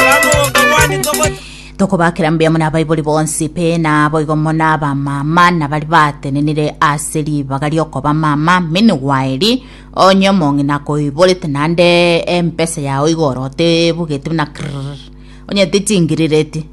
Twamogoko bwanyu togocha. Tokobakera mbuya muna abaibori bonsi pe naboigo muna abamama na bari batenenire ase ribaga riokoba mama mini gwaeri onye omong'ina akoiborete nande empesa yao igoro otebugeti buna krrrr onye tichingirereti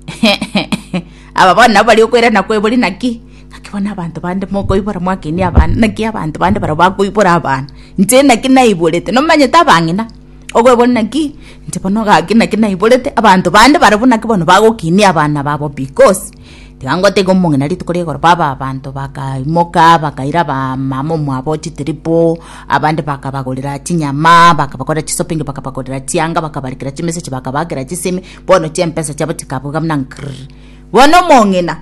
aba bono nabo bari okoirana kwebori naki naki bono abanto bande mokoibora mwakenia abana naki abanto bande barabwo bakoibora abana inche naki naiborete nomanyete abang'ina Okweboria naki inche bono gaki naki naiborete abanto bande barabwo naki bono bagokinia abana babo because tiga ngotebie omong'ina rituko ria igoro baba abanto bakaimoka bakaira abamama omwabo chitiripo abande bakabagorera chinyama bakabakorera chisoping bakabagorera chianga bakabarikera chimesa echi bakabakera chisemi bono chimpesa chiabo chikabuga buna nkrrr bono omong'ina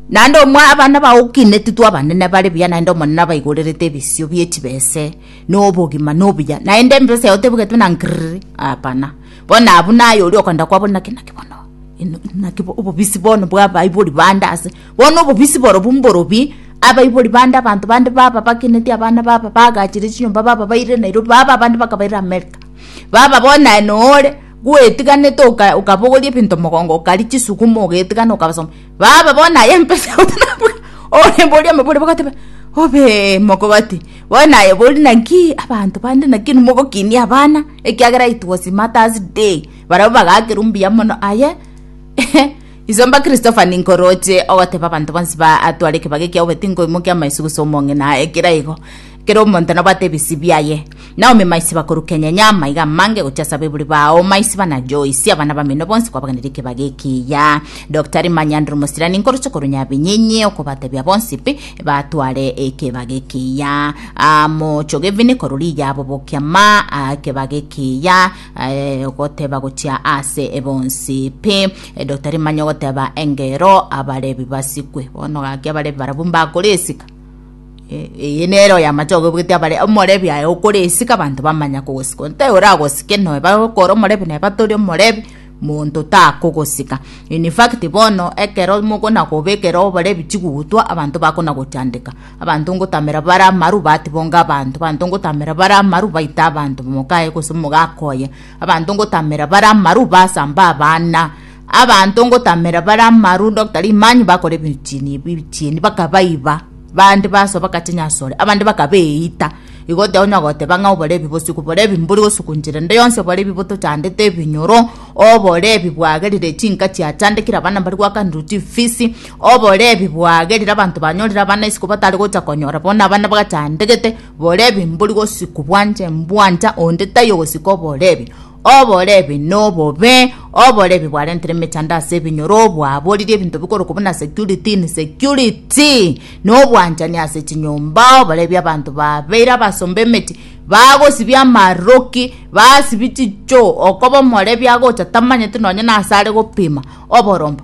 naende omwa abana bago okinetwe abanene bare buya naende omonene abaigorerete ebisio bie chibese. nobogima nobuya naende embesa yao tebugetwe na ngiriri hapana bono abwo naye oria okoenda kwabora naki naki bono eno naki bo- obobisi bono bwa abaibori bande ase bono obobisi borobwo mborobie abaibori bande abanto bande baba bakeneti abana baba bagachire chinyomba baba baire nairobi baba abande bakabaira amerika baba bono naye nore bwetiganete oka okabogoria ebinto mogongo okari chisukuma ogetigana okabasoma. Baba, bono naye empesa gose nabwe oremboria amabori bagateba, Obe mogati, bono naye bori naki abanto bande naki mogokinia abana, ekiagera it was Mother's Day. Barabwo bagakerwa mbuya mono aye iso mba Christopher ninkoroche ogoteba abanto bonsi ba atware ekebago ekiao bati nkoimokia amaiso gose omong'ina aye kera igo Kera omonto nabwate ebisii biaye. Naomi maisi bakorukenyenya amaiga amange gochia ase abaibori bao, maisi bana Joyce, abana bamino bonsi kwabaganire ekebaga ekiya. Doctari Manyanduru Mosirani nkoroche korwa Nyabinyinyi okobatebia bonsi pi batware ekebaga ekiya. Ah, mochoge vini korwa riya bobokia ma ah, ekebaga ekiya eh, goteba gochia ase bonsi pi. Eh, Doctari Manya ogoteba engero abarebi basikwe. Bono gaki abarebi barabwo mbakore esika. Eh, eye nere oyamache ogobugetia abare omorebi aye okore esika abanto bamanya kogosika onte oragosike noe bakore omorebi naye batori omorebi monto takogosika in fact bono ekero mogona koba ekero oborebi chigutwa abanto bakona gochandeka abanto ngotamera bare amaru batibonga abanto abanto ngotamera bare amaru baita abanto mokaye gose mogakoye abanto ngotamera bare amaru basamba abana Abanto ngotamera bare amarundo ota rimanyu bakora ebichieni ebi ebichieni bakabaiba bande basoa bakacha nyasore abande bakabeita igo tonyara goteba ng'a obore ebi gose kobora ebi mbori gosugunchera ende yonsi obore ebibuto chandete ebinyoro obore ebi bwagerire chinka chia chandekire abana mbari gwakanirwa chifisi obore ebi bwagerire abanto banyorire abana isiko batari gocha konyora bono abana bagachandegete bore ebi mbori gosikwa bwancha mbwancha onde taiyo gosika obore ebi. Oborebi nobobe, oborebi bwarentire emechando ase ebinyoro, obwaboririe ebinto bikorokwa buna security, insecurity, na obwanchani ase chinyomba, oborebi abanto babeire abasomba emechie, bagosibia amaroki, basibia chichoo, okoba omorebi agocha tamanyeti nonye nase are gopima oborombe.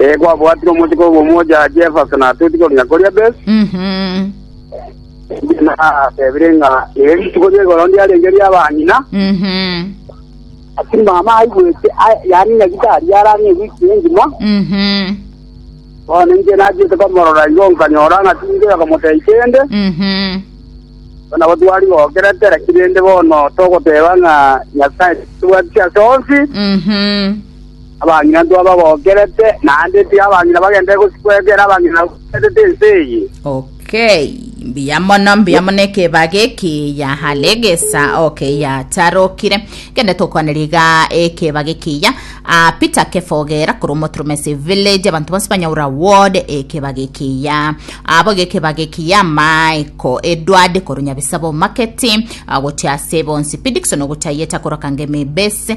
Ee, kwabwatire omochiko obo omochache Efasa natoti korwa koria Besi, Mhm. natebire ng'a ere rituko ri'egoro ndiarenge ri'abang'ina, Mhm. ati mama aigwete, a- yaani ng'a gitari arang'a ewiki engima, Mhm. bono inche nachiete komorora igo nkanyora ng'a tinche akamotebia kende, Mhm. bono nabo twari gokera tera kirende bono togoteba ng'a Nyasaye tibwati ase onsi, Mhm. Abang'ina intwe abagokerete, naende tiga abang'ina bagenderere gosikwa ekero abang'ina bagokeretete ense eye. Okay, mbuya mono mbuya mono ekebaga ekiya alegesa okay yatarokire kende tokwaneria iga ekebaga ekiya ah, Peter Kefogera korwa Omoturumesi village abantu bonsi banyaura ward ekebaga ekiya abo gekebaga ekiya Michael Edward korwa Nyabisabo market ah, gochia ase bonsi Pidikson gochia yeta korwa Kangemi base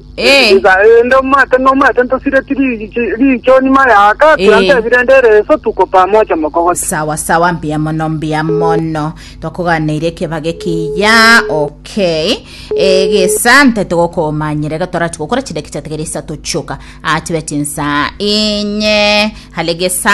Ee. Iga rende omwete nomwete ntosireti ri- chi- riicho nyuma y'aka, Eh. tiantebi rende ere ense otuko pamoja mokogocha. sawa sawa mbuya mono mbuya mono twakoganeire ekebaga ekiya okay egesa ntete gokomanyera iga torachi gokora chidaki chiatigere isato chioka achibe chinsa inye hale gesa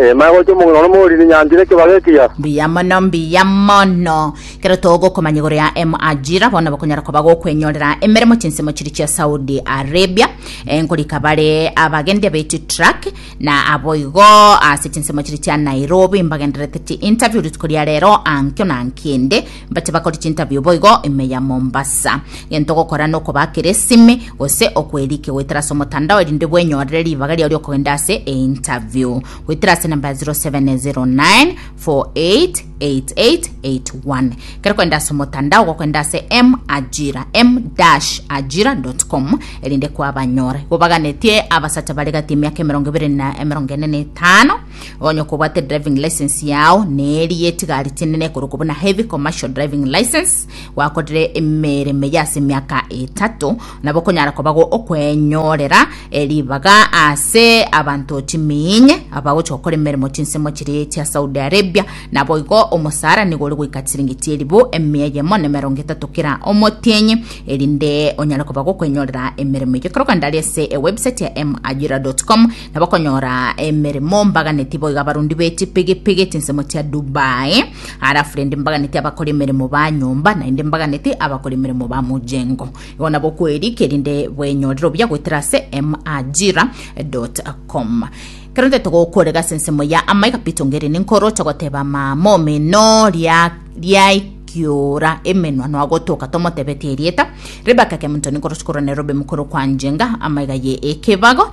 Eema egocha omong'ina one omooriri nyancha ere ekebago ekiya. Mbuya mono, mbuya mono. Ekero togokomanya igoro ya Emu Ajira, bono bakonyara koba gokwenyorera emeremo chinsemo chiria chia Saudi Arabia, eh, nkorika bare abagendi abaiti truck, na aboigo ase chinsemo chiria chia Nairobi mbagendererete chi interview rituko ria rero ankio na ankende, Mbache bakore chintabio boigo ime ya Mombasa. Gento gokora nokobakera esime gose okwerike goetera ase omotandao erinde bwenyorere ribaga riao riokogenda ase eintabio. Goetera ase enamba ya 0709 488881. Kero kogenda ase omotandao gokogenda ase M Ajira, m-ajira.com erinde kwabanyora. Igo baganetie abasacha bare gati emiaka emerongo ebere na emerongo ene na etano. Onye okobwate driving license yao neri yetigari chinene koroko buna heavy commercial driving license gwakorire emere meya ase miaka etato nabo konyara kobago okwenyorera eribaga ase abanto chiminye abagocha gokora emeremo chinsemo chiri chia Saudi Arabia nabo igo omosara nigo ore goika chiringi chieribu emia yemo na emerongo etato kera omotienyi erinde onyare kobago okwenyorera emeremo eyo korokanda ari ase ewebsite ya majira.com Nabakonyora emeremo mbaganeti boiga abarundi be chipigipigi chinsemo chia Dubai, halafu rende mbaganeti abakora emeremo ba nyomba, naende mbaganeti abakora emeremo ba mojengo. Igo nabo kweri, kerinde bwenyorere obuya goetera ase majira.com. Ekero ntaete gokorega ase ensemo ya amaiga, Peter Ongeri ninkoro ocha goteba mama omino ria riai kiora emenwa nwagotoka tomotebetie erieta Rebecca Kemunto ninkorochi korwa Nairobi mokoro kwa Njenga amaiga ye ekebago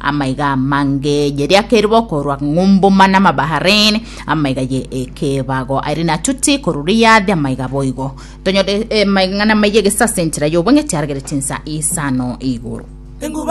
Amaiga amange ye riaka eribo korwa Ng'umbuma na Mabahareni, amaiga ye ekebago aire na Tuti korwa Riadi, amaiga boigo. Tonyore eh, amang'ana amaiga egesase enchera y'obong'iti aragerete insa isano igoro.